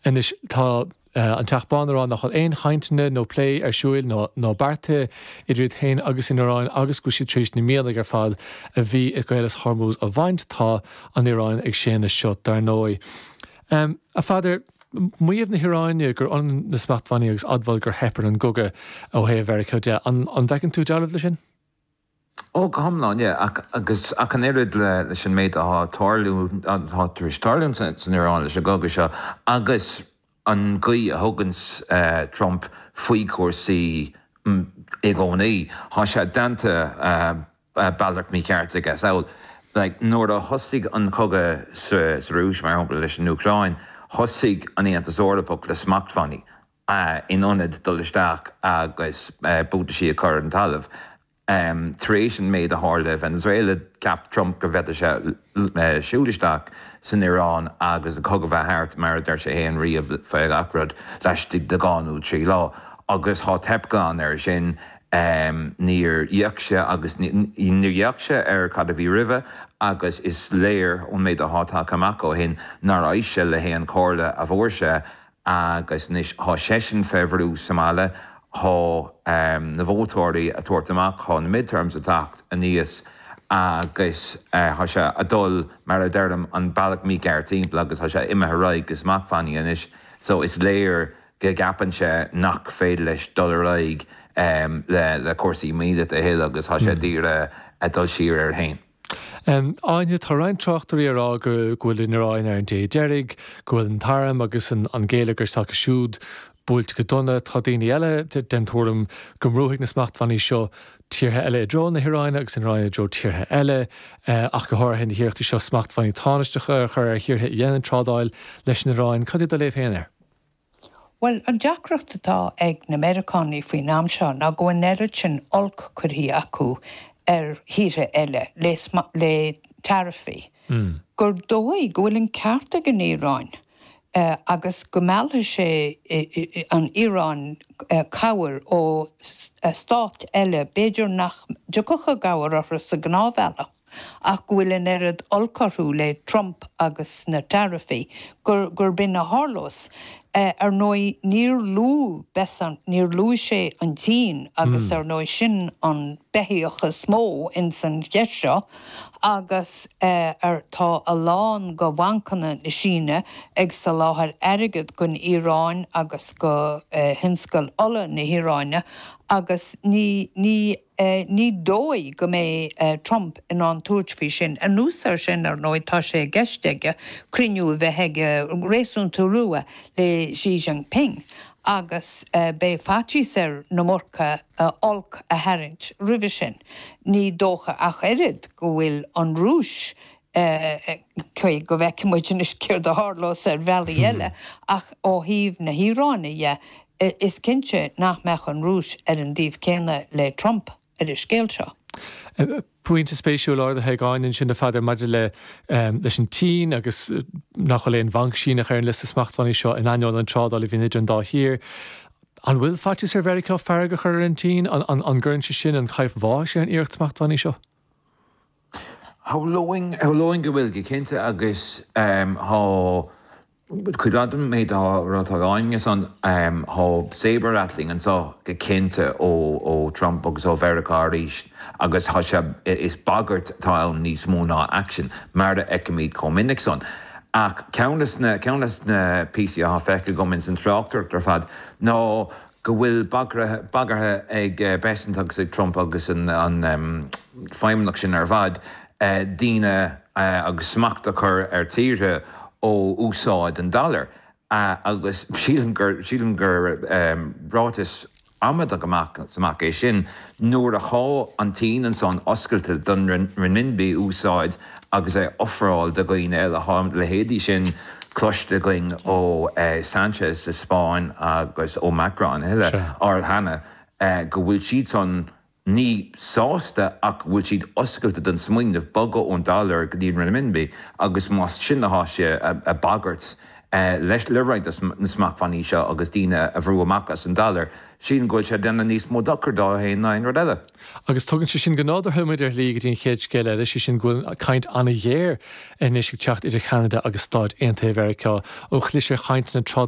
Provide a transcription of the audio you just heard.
Anois tá an Teach Bán ag rá nach bhfuil aon chainteanna nó plé ar siúil, ná beartaithe, idir iad féin agus an Iaráin agus go bhfuil siad tar éis na mianaigh ar fad a bhí i gCaolas Hormuz a bhaint. Tá an Iaráin ag séanadh seo, dar ndóigh. A Pheadair, maíomh na hIaráine gur ionann na smachtbhannaí agus admháil gur theip ar an gcogadh ó thaobh Mheiriceá de, an bhfeiceann tú dealramh leis sin? Ó, go hiomlán, sea, agus, ach an oiread le, leis an méid atá ag tarlú, atá tar éis tarlú ins, san Iaráin leis an gcogadh seo, agus an gcaoi a thugann Trump faoi chúrsaí i gcónaí, tá sé déanta bealach mícheart aige. Is amhail, like, nuair a thosaigh an cogadh sa, sa Rúis, mar shampla, leis an Úcráin, thosaigh an Aontas Eorpach le smachtbhannaí, in ionad dul isteach agus buataisí a chur ar an talamh. Tar éis an méid a tharla i Venezuela, cheap Trump go bhféadfadh sé siúl isteach san Iaráin agus an cogadh a bheith thart, mar a deir sé fhéin riamh, faoi gach rud, laistigh de dhá nó trí lá. Agus tá teip glan air sin. Níor fhéach sé, agus níor fhéach sé ar cad a bhí roimhe agus is léir ón méid atá tagtha amach ó shin nár éist sé le haon chomhairle a fuair sé Agus anois thá seisean fé bhrú sa mbaile. Thá na vótóirí a' tabhairt amach, thá na mid-terms a' teacht aníos agus thá sé a' dul, mar a deirim, an bealach mícheart thimpeall agus thá sé imithe ar aghaidh go smachtbhannaí anois so is léir go gceapann sé nach féidir leis dul ar aghaidh le cúrsaí míleata a thuilleadh agus thá sé d'iarraidh a dhul siar air fhéin. Áine, tá roinnt tráchtairí ag rá go bhfuil an Iaráin ar an dé deiridh, go bhfuil an t-arm agus an géilleagar s'acu siúd buailte go dona. Tá daoine eile den tuairim go mbrúfaidh na smachtbhannaí seo tíortha eile i dtreo na hIaráine agus an Iaráin i dtreo tíortha eile, ach go háirithe na hiarrachtaí seo smachtbhannaí tánaisteacha a chur ar thíortha a dhéanann trádáil leis an Iaráin. Cad é do léamh féin air? Bhuel, an deacracht atá ag na Meiriceánaigh faoin am seo ná go bhfuil an oiread sin oilc curtha acu ar thíortha eile le taraifí gur dóigh go bhfuil an ceart ag an Iaráin agus go meallfaidh sé an Iaráin cabhair ó stáit eile, b'fhéidir nach dtiocfadh i gcabhair orthu sa ghnáthbhealach. ach go bhfuil an oiread oilc orthu le Trump agus na taraifí gurb in a tharlós. Ar ndóigh, níor luaigh Bessent, níor luaigh sé an tSín agus ar ndóigh sin an beithíoch is mó ins an cheist seo agus tá a lán go bhancanna na Síne ag soláthair airgead gon Iaráin agus go thionscal ola na hIaráine agus ní Ní dóigh go mbeidh Trump in ann a thabhairt faoi sin. Anuas air sin, ar ndóigh, tá sé i gceist aige cruinniú a bheith aige réasúnta luath le Xi Jinping agus beidh faitíos air na Murca olc a tharraingt roimhe sin. Ní dócha ach oiread go bhfuil an Rúis Go bhfeicfidh muid anois céard a tharlós. Ar bhealaí eile ach ó thaobh na hIaráine dhe, is cinnte nach mbeadh an Rúis ar an dtaobh céanna le Trump ar an scéal seo. Pointe spéisiúil ardaithe ag Áine ansin ar fad maidir leis an tSín agus nach bhfuil aon bhanc Síneach ar an liosta smachtbhannaí seo in ainneoin an trádáil a bhíonn idir an dá thír. An bhfuil faitíos ar Mheiriceá fearg a chur ar an tSín? An gcuireann sé sin an chaidhp bháis ar an iarracht smachtbhannaí seo? Shamhlóinn go bhfuil, go cinnte, agus tá cuid mhaith den méid atá á rá ag Áine ansan, tá saber-rattling anseo go cinnte ó Trump agus ó Mheiriceá arís agus tá sé, is bagairt atá ann níos mó ná action, mar a fheicimid chomh minic san. Ach ceann de na píosaí atá feicthe agam ins an tráchtaireacht ar fad ná, go bhfuil bagartha ag Bessent agus ag Trump agus an feidhmeannas sin ar fad daoine agus smacht a chur ar tíortha ó úsáid an dollar agus sílim gur ráiteas amaideach amach is amach é sin nuair atá an tSín ansan oscailte don renminbi úsáid agus é a ofráil do dhaoine eile. Tá a leithéidí sin cloiste againn ó Sanchez sa Spáinn agus ó Macron a thuilleadh, ar ball cheana go bhfuil siadsan ní sásta ach go bhfuil siad oscailte don smaoineamh bogadh ón dollar go dtí an renminbi agus más sin atá sé a bagairt leis le roinnt des na smachtbhannaí seo agus daoine a bhrú amach as an dollar, sílim go bhfuil sé ag déanamh níos mó dochair dó féin ná aon rud eile. Agus tugann sé sin go nádúrtha muid ar shlí go dtín chéad scéal eile, sé sin go bhfuil caint an-ghéar anois ag teacht idir Cheanada agus Stáit Aontaithe Mheiriceá ó chlis ar chainteanna